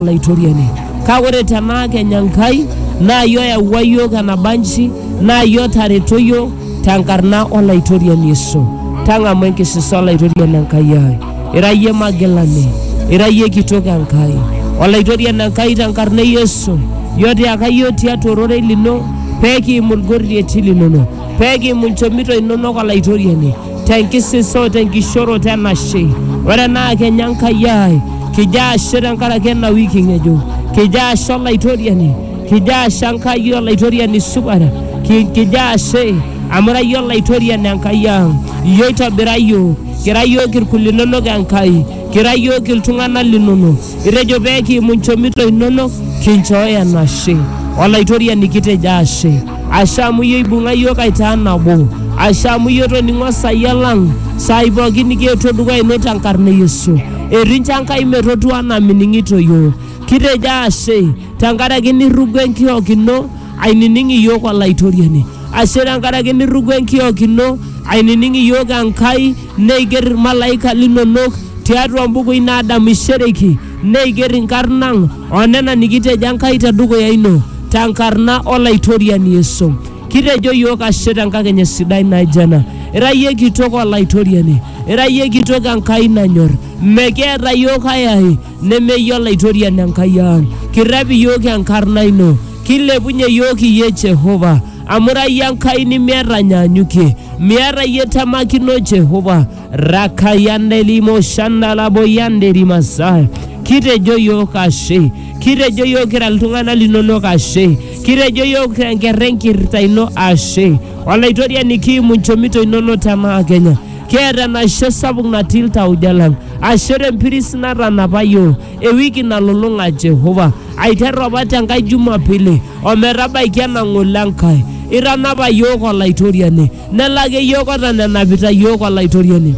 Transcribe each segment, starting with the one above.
Olaitoriani. Kake ore tenaa kenya Enkai naa iyie oyawua iyiook enabanji naa iyie otareto iyiook tenkarna Olaitoriani Yesu. Tang'amu enkisisa Olaitoriani Enkai ai. Ira iyie magilani, ira iyie kitok Enkai. Olaitoriani Enkai tenkarna e Yesu, iyie otiaka iyiook tiatua ororei lino pee kiimu ilgorrieti linono, pee kiimu ilchomito inonok Olaitoriani. tenkisiso tenkishoroto enashe ore enaa kenya Enkai ai kijo ashe tenkaraki ena wiki ng'ejuk kijo ashe olaitoriani kijo ashe Enkai olaitoriani supat Ki- kijo ashe amu ira iyie olaitoriani Enkai ang iyie oitobira iyiook kira iyiook irkul linonok Enkai kira iyiook iltung'anak linonok Itejo pee kiimu nchomito inonok kinchooyo enashe. Olaitoriani kitejo ashe. Ashe amu iyie oibung'a iyiook aitaa nabo. Ashe amu iyie otoning'o esaia lang saai pooki nikietuo dukuya ino tenkarna e Yesu. Etincho Enkai metotu anaa mining'ito iyiook. Kitejo ashe tenkaraki nirrugo enkiok ino ainining iyiook Olaitoriani. Ashe tenkaraki nirrugo enkiok ino ainining iyiook Enkai Neiger ilmalaika linonok tiatua imbukui naadamishereki, neiger inkarn ang o nena nikitejo Enkai te dukuya ino, te nkarna o Laitoriani Yesu. Kitejo iyiook ashe te nkakenya sidai naijo ena. Ira iyie kitok o Laitoriani, ira iyie kitok Enkai nanyor. Mekiata iyiook ai ai neme iyie Olaitoriani Enkai ang. Kirrep iyiook enkarna ino, kilepunye iyiook iyie Jehovah. Amu ira iyie Enkai nimiata anyaanyukie, miata iyie temakino Jehova. Rakayande limo shanda laboyande limasai. Kitejo yiok ashe, kitejo yiok kira iltung'anak linonok ashe, kitejo yiok tenkerra enkirrita ino ashe. Olaitoriani kiimu nchomito inono tenaa Kenya. Kiata enashe sapuk natii iltauja lang. Ashe tempiris natanapa yiok. ewiki nalulung'a Jehova aiteru apa te Nkai Jumapili o metabaiki ena ng'ole Enkai. Itanapa iyiook Olaitoriani, nelaki iyiook otanenapita iyiook Olaitoriani.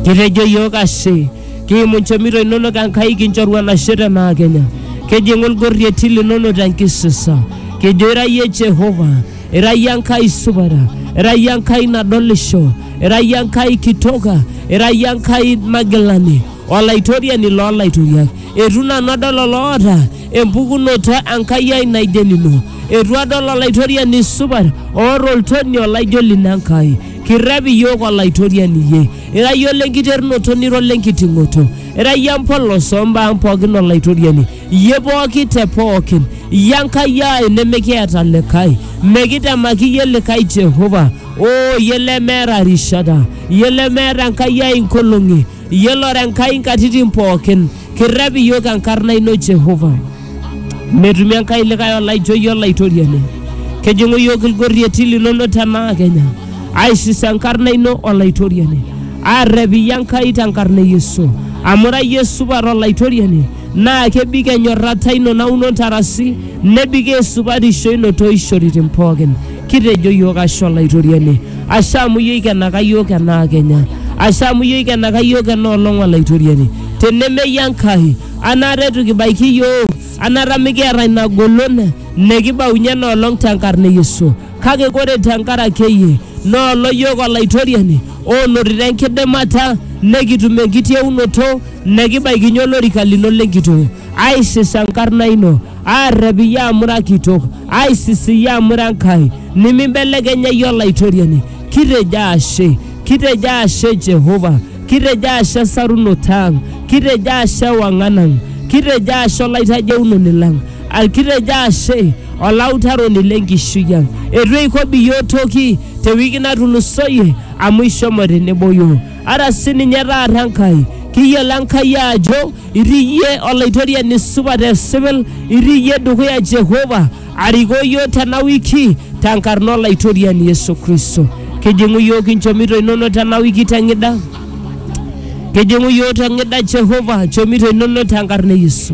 Kitejo iyiook ashe, kiimu nchomito inonok Enkai kinchoru enashe te naa Kenya. Kijing'u ilgorrieti linono te nkisisa, kijo ira iyie Jehova, ira iyie Enkai supat, ira iyie Enkai nadolisho, ira iyie Enkai kitoka, ira iyie Enkai magilani. Olaitoriani loo laitoriak, eitu nanu adol oloota empukunoto Enkai ai naijo enino, eitu adol Olaitoriani supat oota oltoni olaijo lino Enkai. Kirrep iyiook Olaitoriani iyie, ira iyie ole nkiterunoto nira ole nkiting'oto, ira iyie empolos oo mbaa ang pooki Olaitoriani, iyie pooki te pooki, iyie Enkai ai nimikiata likae, mikitemaki iyie likae Jehovah, oo iyie lemeeta rishata, iyie lemeeta Enkai ai nkolong'i. Iyiolo ora Enkai nkatitin pookin, kirrep iyiook enkarna ino Jehova. Metumi Enkai likae olaijo iyie Olaitoriani. Kejing'u iyiook ilgorrieti linono tenaa kenya, aishis enkarna ino Olaitoriani. Aarrep iyie Enkai tenkarna e Yesu. Amu ira iyie supat Olaitoriani, naa kebik enyorrata ino nauno ntarasi, nebik esupatisho ino too ishoritin pookin. kitejo iyiook ashe olaitoriani ashe amu iyie oikenaka iyiook enaa kenya ashe amu iyie oikenaka iyiook ena olong olaitoriani tenemeyie enkai anaata etu kibaiki iyiook anaata mikiata ina golon nikibaunye ena olong tenkarna e yesu kake kore tenkaraki eye noolo iyiook olaitoriani onotito enkidimata nekitum enkitieunoto nekibaikinye olorika lino lenkitoo aisisa enkarna ino, aarrep iyie amu ira kitok, aisis iyie amu ira Enkai, nimimbelekenya iyie Olaitoriani. Kitejo ashe, kitejo ashe Jehova, kitejo ashe esarunoto ang', kitejo ashe ewang'an ang', kitejo ashe olaitajeunoni lang', al- kitejo ashe olautaroni lenkishui ang'. Eitu eikobi iyiook toki te wiki natulusoyie amu ishomo tenebo iyiook. Ara sininye taata Enkai, kiyiolo Enkai ajo Itii iyie Olaitoriani supat esipil, itii iyie dukuya Jehova arikoo iyiook tena wiki tenkarna Olaitoriani Yesu Kristo. Kijing'u iyiook inchomito inonok tena wiki teng'ida, kijing'u iyiook teng'ida Jehova nchomito inonok tenkarna e Yesu.